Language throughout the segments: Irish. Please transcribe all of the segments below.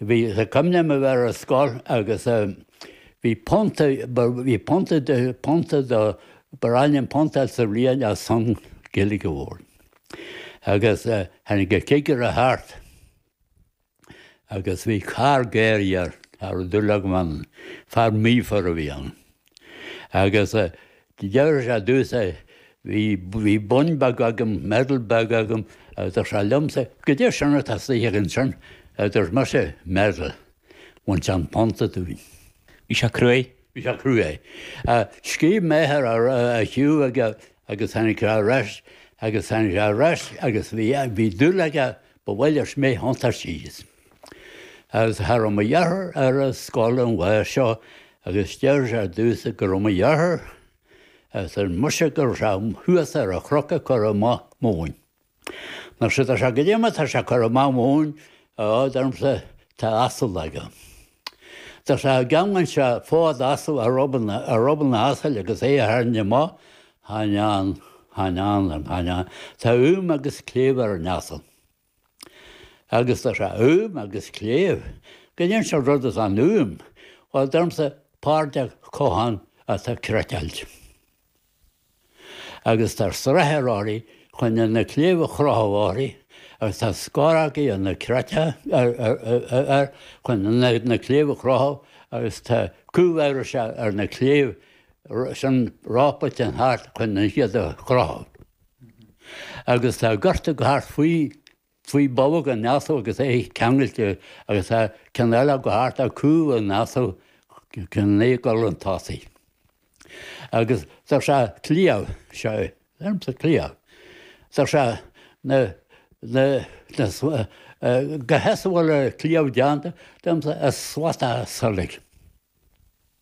Bhí sé, cuimhin liom a bheith ar scoil agus bhí punt, bhí punt, punt do, ba ghnách linn punta sa bhliain ar son Gaeilge a labhairt. Agus tháinig an cigire thart agus bhí cha raibh, cha raibh aon dúil agam ann, fear míofar a bhí ann. Agus deir sé domhsa, bhí bonn beag agam, medal beag agam, agus deir sé liomsa, cad é sin atá istigh agat ansin, a dúirt mise, medal. Bhain sé an punta dúinn. Bhí sé cruaidh. Bhí sé cruaidh. Scríobh m'athair chuige agus tháinig sé ar ais agus tháinig sé ar ais agus bhí dúil aige ba mhaith leis mé a thiontú síos. Agus cha raibh mo dheartháir ar an scoil an lá seo agus deir sé domhsa cá raibh mo dheartháir agus arsa mise go raibh sé thuas ar an chnoc ag cur amach móin. Mar sin tá sé cad é mar tá sé ag cur amach móin á, deirimse tá asal aige. Tá sé an gceanglann sé fód asal ar ruball ar ruball an asail agus é a tharraingt amach chan ea chan ea chan ea tá úm agus cléibh ar an asal. Agus tá sé úm agus cléibh. Cad é an sórt rud é an úm, bhuel, deirimse páirt de cochán atá cniotáilte. Agus tá srathar uirthi chun na cléibh a chrochadh uirthi agus tá scorógaí ar an tsrathar chun na cléibh a chrochadh agus tá cúl air seo ar na cléibh sin rápailtean thart chun iad a chrochadh. Agus tá giorta ag gol thart faoi, faoi bholg an asail agus é ceangailte agus tá ceann eile ag gol thart ar chúl an asail, ceann eile ag gol chun tosaigh. Agus tá sé cliabh, seo é, deirimse cliabh. Tá sé na, na, na, cad é as a bhfuil an cliabh deánta, deirimse as slata saileog.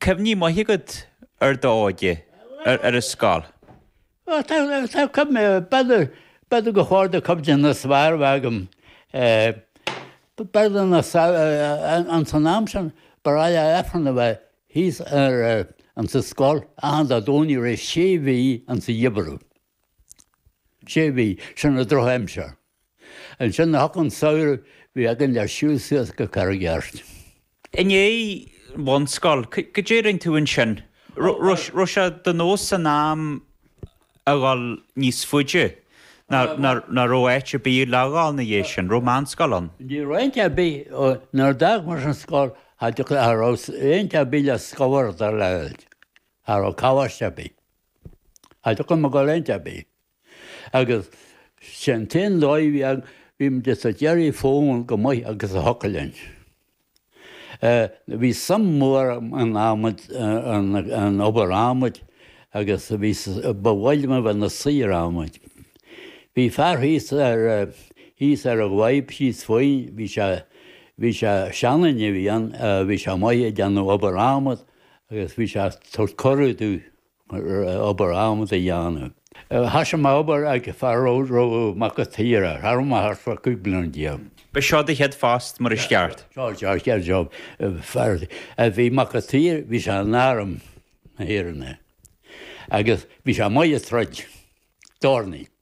cuimhní maithe agat ar d'óige ar an scoil? Ó tá, tá cuimhne, b'fhéidir, b'fhéidir gur cuid de na cuimhní is fearr a bheadh agam. Ba ghnách linn na sa, insan am sin, ba ghnách le Aifreann a bheith thíos ar an sa scoil achan Dé Domhnaigh i rith sé mhí insa gheimhreadh. Sé mhí, sin an drochaimsir. Ansin nuair a thiocfadh an samhradh bhí againn le siúl suas go Carraig Airt. I ndiaidh bhunscoil, cad é rinne tú ansin? Raibh sé de nós san am a dhul níos faide nó an raibh áit ar bith le dhul ina dhiaidh sin? Raibh meánscoil ann? Ní raibh aon áit ar bith, nuair a d'fhág mise an scoil cha dtiocfadh, cha raibh aon áit ar bith le scabhardadh le, cha raibh coláiste ar bith. Aidhm mo gharréint ab ea agus sé an t-aon dóigh a bhí agam, bhí muid ag tabhairt aire fúinn féin go maith agus a thiocfadh linn. Bhí suim mhór agam in adhmad, in obair adhmaid agus ba mhaith liom a bheith i mo shaor adhmaid. Bhí fear thíos ar, thíos ar an bhfadhb thíos fúinn, bhí sé, bhí sé, seanduine a bhí ann, bhí sé amuigh ag déanamh obair adhmaid, agus bhí sé ag tabhairt cuireadh domh obair adhmad a dhéanamh. Thoisigh mé obair ag fear darbh Mac a' tSaoire tharam thart fá 15 bliain. Ba seo do chéad phost mar is ceart? Seo an chéad job fear a bhí Mac a' tSaoire bhí sé in arm na hÉireann é agus bhí sé amuigh ag troid. Dornálaí.